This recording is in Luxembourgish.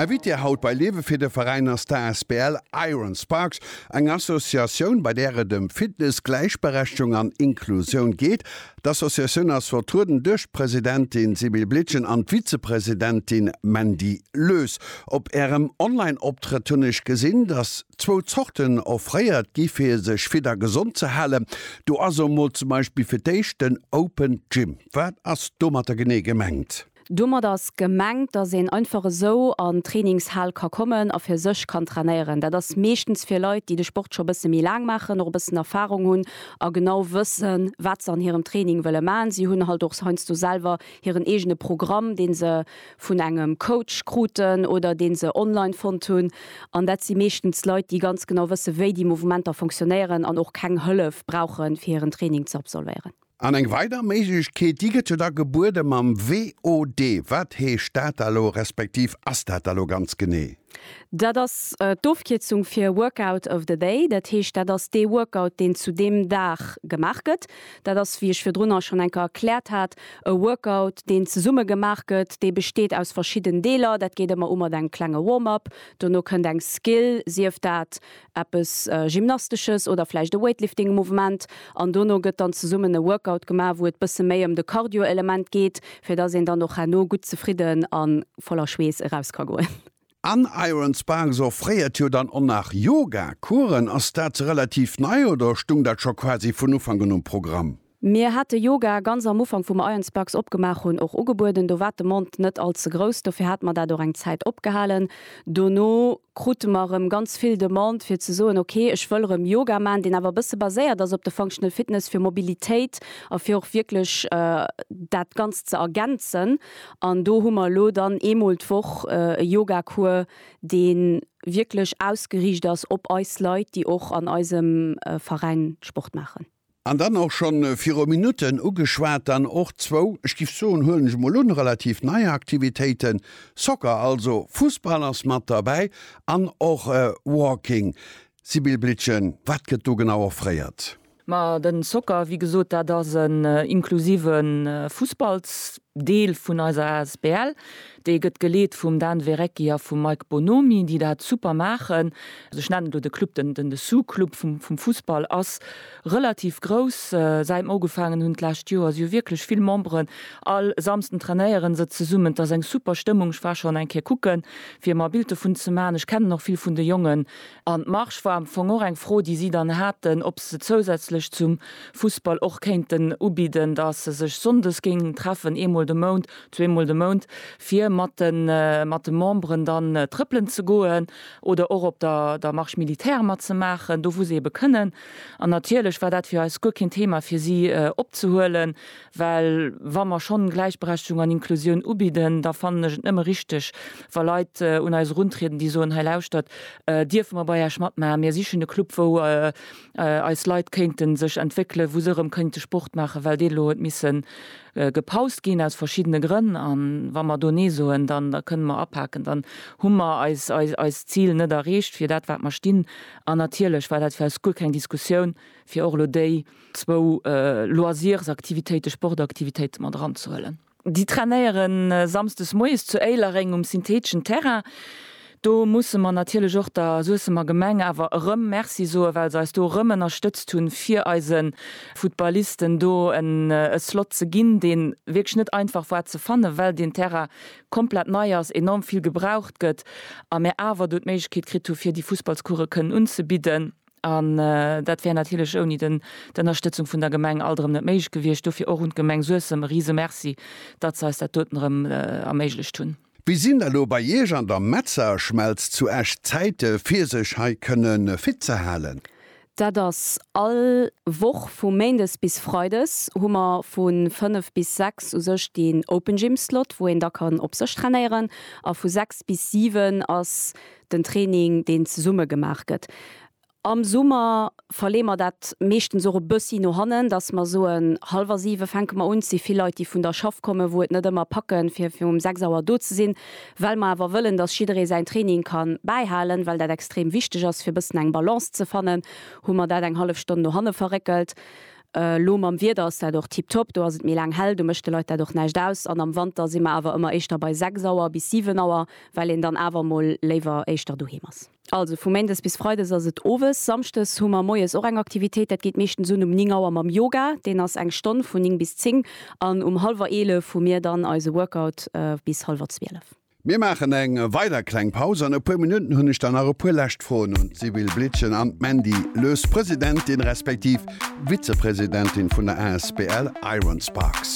Invitée haut bei Lewe fir de Veräin ass d'Asbl Iron Sparks, eng Associatioun, bei där et ëm Fitness, Gläichberechtigung an Inklusioun geet. D'Associatioun ass vertrueden duerch d'Presidentin Sibylle Blitgen an d'Vizepresidentin Mandy Loes. Op ärem Online-Optrëtt hunn ech gesinn, dass zwou Zorten offréiert gi fir sech fit a gesond ze halen. Do ass emol zum Beispill fir d'éischt den Open Gym. Wat ass domatter genee gemengt? Domat ass gemengt, dass een einfach esou an d'Trainingshal ka kommen a fir sech kann trainéieren. Dat ass meeschtens fir Leit, déi de Sport scho e bësse méi laang maachen, och e bëssen Erfarung hunn a genau wëssen, wat se an hirem Training wëlle maachen. Si hunn halt och heiansdo selwer hiren eegene Programm, dee se vun engem Coach kruten oder dee se online fonnt hunn. An dat si meeschtens Leit, déi ganz genau wëssen, wéi déi Mouvementer fonctionnéieren an och keng Hëllef brauchen, fir hiren Training ze absolvéieren. An eng weider Méiglechkeet, déi gëtt jo da gebuede mam VOD. Wat heescht dat da lo, respektiv ass dat da lo ganz genee? Dat ass d'Ofkierzung fir Workout of the day. Dat heescht, dat ass dee Workout, deen zu deem Dag gemaach gëtt. Dat ass, wéi ech virdrunner schonn eng Kéier erkläert hat, e Workout, deen zesumme gemaach gëtt. Dee besteet aus verschidden Deeler. Dat geet ëmmer u mat engem klenge Warm-up. Dono kënnt eng Skill, sief dat eppes Gymnastesches oder vläicht e Weightlifting-Mouvement an dono gëtt dann zesummen e Workout gemaach, wou et bësse méi ëm de Cardio-Element geet, fir dass een dann och herno gutt zefridden a voller Schweess eraus ka goen. An Iron Sparks offréiert jo dann och nach Yoga-Coursen. Ass dat relativ nei oder stung dat scho quasi vun Ufank un um Programm? Mir hate Yoga ganz am Ufank wou mer Ions Bucks opgemaach hunn och ugebueden. Do war d'Demande net all ze grouss, dofir hate mer dat och eng Zäit opgehalen. Dono krute mer erëm ganz vill Demande fir ze soen, ok ech wëll erëm Yoga maachen, deen awer e bësse baséiert ass op de Functional Fitness fir Mobilitéit a fir och wierklech dat Ganzt ze ergänzen. An do hu mer elo dann eemol d'Woch e Yoga Cours dee wierklech ausgeriicht ass op eis Leit déi och an eisem Veräin Sport maachen. An dann och schonn viru Minutten ugeschwat, dann och zwou, ech giff soen, huelen ech emol un, relativ nei Aktivitéiten, Soccer, also Fussball ass mat derbäi, an och Walking. Sibylle Blietgen, wat gëtt do genau offréiert? Ma den Soccer, wéi gesot, dat ass en inklusive Fussballsport. Deel vun eiser asbl. Déi gëtt geleet vum Dan Verrecki a vum Mike Bonomi, déi dat super maachen. Also ech nennen elo de Club den den Dessous Club vum vum Fussball ass relativ grouss. Säit mer ugefaangen hunn d'lescht Joer, si hu wierklech vill Memberen. All Samsden trainéiere se zesummen. Et ass eng super Stëmmung. Ech war schonn eng Kéier kucken, fir mer e Bild dovun ze maachen. Ech kennen och vill vun de Jongen. An d'Marsch war am Fong och eng Fro, déi si dann haten, ob se zousätzlech zum Fussball och kéinten ubidden, dass se sech sonndes géingen treffen, eemol de Mount, zweemol de Mount, fir mat de Memberen dann trëppelen ze goen oder och op der Marche militaire matzemaachen, do wou se ebe kënnen. An natierlech war dat fir eis guer keen Thema, fir si opzehuelen. Well wa mer schonn Gläichberechtigung an Inklusioun ubidden, da fannen ech et nëmme richteg, wa Leit un eis eruntrieden, déi soen, Hei lauschtert, dierfe mer bei Äech matmaachen? Mir sichen e Club, wou eis Leit kéinte sech entwéckelen, wou se erëm kéinte Sport maachen, well dee elo huet misse gepaust ginn aus verschiddene Grënn. A wa mer do Nee soen, dann da kënne mer apaken, dann hu mer eist Zil net erreecht fir dat, wat mer stinn. An natierlech war dat fir eis guer keng Diskussioun, fir och elo déi, zwou Loisirsaktivitéite, Sportaktivitéite mat eranzehuelen. Déi trainéiere samsdes moies zu Éilereng um syntheteschen Terrain. Do musse mer natierlech och der Suessemer Gemeng awer erëm Merci soen, well se eis do erëm ënnerstëtzt hunn, fir eise Footballisten do en Slot ze ginn, dee wierklech net einfach war ze fannen, well deen Terrain komplett nei ass, enorm vill gebraucht gëtt a mir awer do d'Méiglechkeet kritt hu fir déi Fussballscourse kënnen unzebidden. An dat wär natierlech ouni d'Ënnerstëtzung vun der Gemeng alt erëm net méiglech gewiescht. Dofir och un d'Gemeng Suessem e rise Merci, datt se eis dat doten erëm erméiglecht hunn. Wéi sinn elo bei Iech an der Metzerschmelz zu Esch d'Zäite fir sech hei kënne fit ze halen? Dat ass all Woch vu méindes bis freides hu mer vu 5 bis 6 u sech deen Open Gym Slot, wou een da kann op sech trainéieren a vu 6 bis 7 ass den Training, deen zesumme gemaach gëtt. Am Summer verleeë mer dat meeschtens och e bëssi no hannen, dass mer soen, hallwer siwe fänke mer un. Et si vill Leit, déi vun der Schaff kommen, wou et net ëmmer packen, fir fir um sechs Auer do ze sinn, well mer awer wëllen, dass jidderee säin Training ka bäihalen, well dat extrem wichteg ass, fir e bëssen eng Balance ze fannen, hu mer dat eng hallef Stonn no hanne verréckelt. Elo mam Wieder ass dat och tiptop, do ass et méi laang hell, do mécht de Leit dat och näischt aus. An am Wanter si mer awer ëmmer éischter bei 6 Auer bis 7 Auer, well een dann awer mol léiwer éischter doheem ass. Also vu méindes bis freides ass et owes. Samschdes hu mer moies och eng Aktivitéit, dat geet meeschtens un um 9 Auer mam Yoga, deen ass eng Stonn vun 9 bis 10 an um hallwer 11 hu mir dann eise Workout bis hallwer 12. Mir maachen eng weider kleng Paus. An e puer Minutten hunn ech dann nach e puer lescht Froen un d'Sibylle Blietgen an d'Mandy Loes, Presidentin respektiv Vizepresidentin vun der asbl Ironsparks.